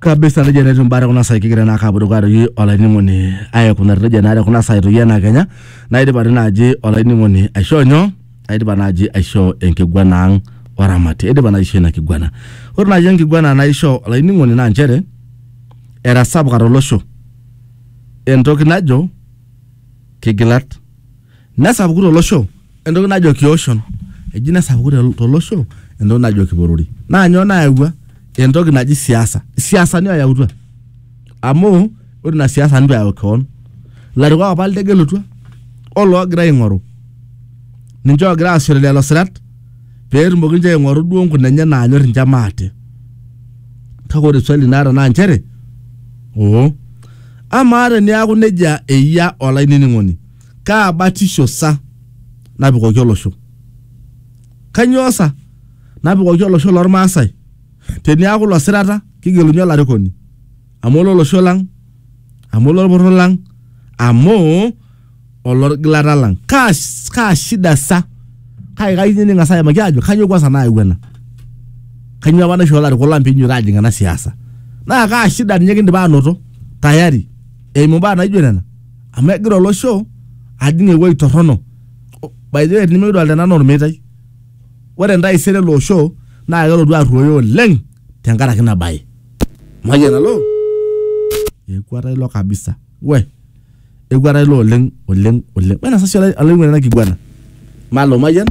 kabisa nejia naa etiu imbaa tekuna saai kigira naa ake apuo dukuya toi olainining'oni aikunari nejia naa tekuna saai toi enaa kenya naidipa toi naaji olainining'oni aishoo nyoo aidipa naaji aishoo enkiguana ang oramati aidipa naaji aishoo ina kiguana ore naaji enkiguana naishoo olainining'oni naa nchere etasapuka tolosho entoki najo kigilat Nesapuku tolosho entoki najo kioshon, eji nesapuku tel- tolosho entoki najo kiporori. Naa nyoo nayawua entoki naji siasa, siasani oyautua amu ore ina siasa nitu eyau kewon, ilarikok apa litegelutua oloogira aing'oru ninche oogira aasishore lelo sirat pee etumoki ninche aing'oru duo nkuna enye naanyor ninche maate. Kake ore swali naata naa nchere oo amaa teniaku neijia eyia olainining'oni Kaa batisho sa napikoki olosho? Kanyoo sa napikoki olosho loo Lmaasai? Teniaku ilo sirata kigeluni olarikoni amu olo losho lang, amu olo lporor lang, amu olo lgilata lang. Kaa, kaa shida sa? Kake kayieu ninye niking'as aimaki aajo kanyoo kwansa nayawua ena? Kanyoo apa naishoo larikok lang peinyototo aajing ena siasa? Naa kaa shida ninye kindipa aanoto tayari eimu imbaa naijo nena? amu egira olosho ajing ewueji torrono O- by the way nimikidolta ena anaa ormeitai ore entaisere ele osho naa kelotu arruoyo oleng tenkaraki ina baye mayian alo ekuata ilo kabisa we ekuata ilo oleng oleng oleng wena sasa olai- olaing'uani ena kiguana malo mayian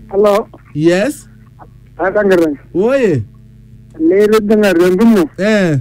Halo, yes akangira. oye Nilibinga rendumo. eh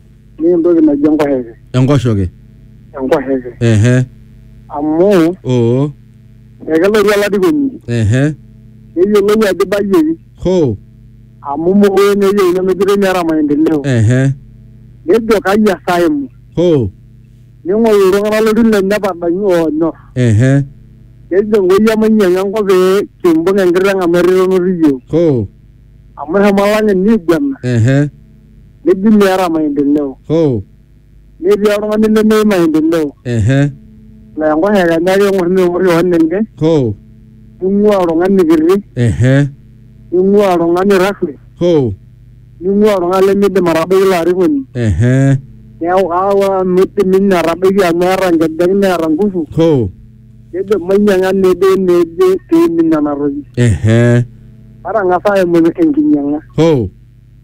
Ni entoki naji enkosheke. Enkoshoke. Enkosheke. Ehe. Amu, Oo. ekelotu olarikoni, Ehe. neyiolou ajo ibayieki. Hoo. Amu mokure naa eyieu nemejitoi meeta maendeleo. Ehe. Nejo kai esaa aimu. Hoo. Ning'oru iltung'anak loltiu lenye padamu oonyor. Ehe. Nejo Nkoi emainyiang'u enkop pee kimbung enkiteng amu eton etu iyieu. Hoo. Amu eshomo olang'eni aiguana. Ehe. neji meeta maendeleo oh netii oltung'ani lemeyieu maendeleo ehe laa enkosh ake enya ake eng'or neng'or kewon enye oh ning'ua oltung'ani kiti ehe ning'ua oltung'ani rasmi oh ning'ua oltung'ani lemidim atabaiki ilo arikoni ehe neeku aawa midim ninye atabaiki amu eeta nkejek neeta nguvu oh nejo mainyiang'a neje neje peimin nena toki ehe matang'asa aimu enkinyiang'a oh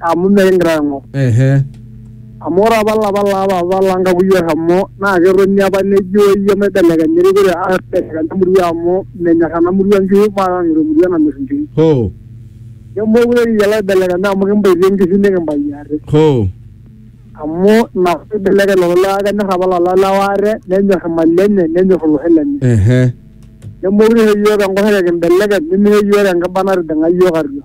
amu mikingira aing'or. Ehe. Amu ore apa lapa laa papa lang kakuyia oshomo naa ketoni apa nejo iyie maibelekenya erikore aibelekenya emurua amu menyor ena murua nkishu mataa ng'iro emurua namir nkishu. Hoo. Nemookure kiyiolo aibelekenya amu kimbaitie nkishu nikimbayie ate. Hoo. Amu ina piibelekeny lelo lewa kenyor apa lelo lewa ate nenyor imali enye nenyor olosho lenye. Ehe. Nemookure isho iyiok enkoshoke kimbelekeny nimisho iyiok enkiba natijing'a iyiok atua.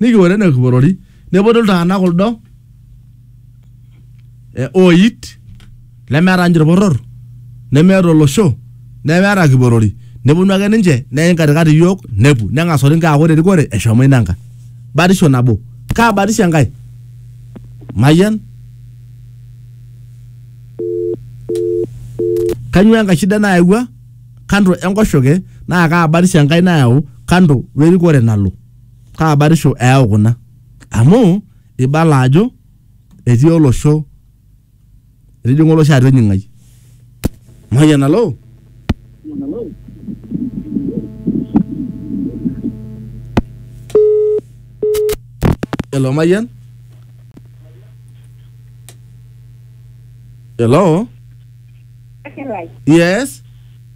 nikiwuoru ene kiporori nepotu iltung'anak kuldo eh, ooit lemeeta ninche ilporor nemeeta olosho nemeeta kiporori neponu ake ninche neim katikati iyiook nepu neng'as orinka aaku ore erikore eshomo ina nkae batisho nabo kaa batisho enkae mayian kanyoo enkae shida nayawua kando enkoshoke naa kaa batisho enkae nayau kando werikore nalo Kaa batisho eyau kuna? Amu eibala ajo etii olosho, etijing'a olosho atua enying'ai. Mayian alo. Hello, Mayian? Hello? Yes?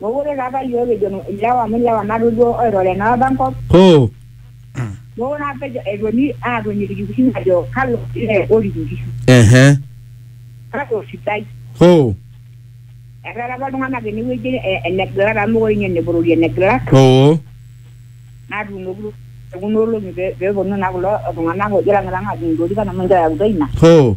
Mokure apa iyiook kijo ilewa amu ilewa natu duo oiroro enaapa enkop. Hoo. Mokure apa eponi aatoni ilkikuyu ajo kalo lee orik inkishu. Ehe. Kake osidai. Hoo. Etaa apa iltung'anak enewueji enegilata amu mokure ninye eneborori enegilata. Oo. Natuunoki duo tekuna olong'i pee eponu naa kulo tung'anak oojo lang'ilang'a aadung ilorikan amu ninche oyautua ina. Hoo.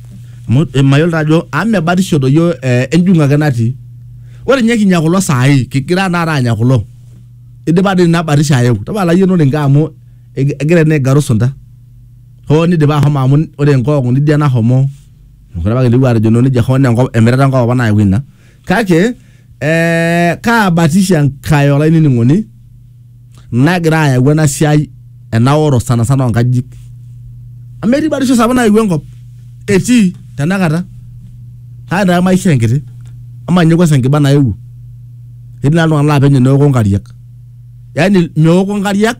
amu eh, mayiolo taa ajo amu mebatisho doi yo eh, enjung'u ake natii ore ninye kinya kulo saai kigira taata anya kulo idipa dii ina batisho ayeu tapala yie noninke amu eg- egira ene aigaru sunta hoo nidipa ahomo amu ore enkoong'u nidia nahomo mekure apa kintoki atejo noo nejia hoo naa enkop emirata enkop apa nayau ina kake eh, kaabatisho enkae olainining'oni nagira ayau ena siai enaoro sana sana oonkajijik amu etii batisho sapuk nayewuo enkop etii tenakata kake taa maisha enkiti ama ninye kwanza enkiba naewuo etii naa iltung'anak laa penyo neoko nkariak yaani meoko nkariak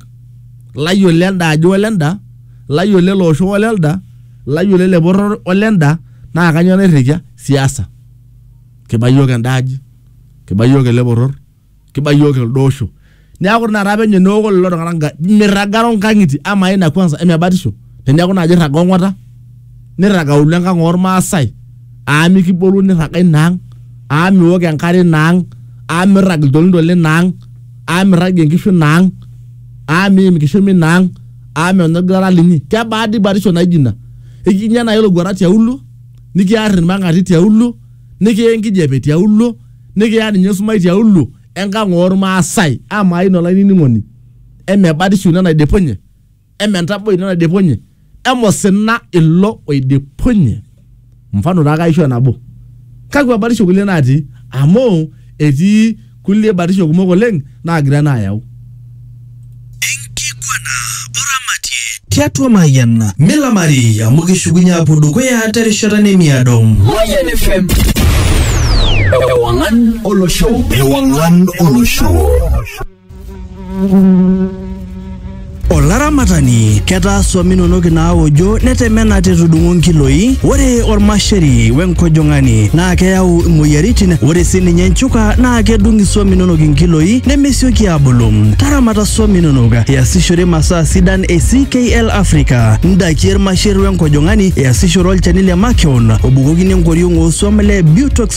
layiolo elde ajo ole enda layiolo ele osho ole elde layiolo ele poror ole enda naa kanyoo nairrikia siasa kiba iyiook enda aji, kiba iyiook ele poror, kiba iyiook elde osho. Neeku ore taata penyo neoku lelo tung'anak nka- mirragaro nkang'itie amaa ina kwanza eme batisho teneeku naaji irraga ong'ata nirrag auluo enkang' ormaasai aa mikibolu nirraga ina ang' aa miok enkare ina ang' aa mirrag iltolinto lina ang' aa mirragie nkishu ina ang' aa miim inkishomi ina ang' aa menya orgilata linyi. Kebaa dii batisho naijo ina? Eji ninye nai olokuata tiauluo. nikiar ilmang'ati tiaulo, nikiya enkijape tiaulo, nikiya ninye esumash tiaulo enkang oolmaasai. Amaa ina olainining'oni, eme batisho ina naidipunye? Eme entaboi ina naidipunye? Eme osina ilo oidipunye? Mfano taa ake aishoo nabo. Kakua batisho kulie natii? Amu etii kulie batisho kumok oleng naagira ena ayau. Enkiguana oramatie tiatua Mayian milamari amu kishukunye aapuo dukuya terishata nemiado. Mayian FM. Ewangan olosho. Ewangan olosho. Olaramatani, ketaa swam inonok inaaojo netemena te tudung'o nkiloi. Ore olmasheri we nkojong'ani naa keyau imoyiaritin. Ore sii ninye nchuka naa kedung iswam inonok inkiloi nemesioki aabulu. Taramata swam inonok iasishore masaa sidan e CKL Africa, ndaiki e lmasher we nkojong'ani, iasishore olchani le makeon obukokini enkoriong oo swam le Butox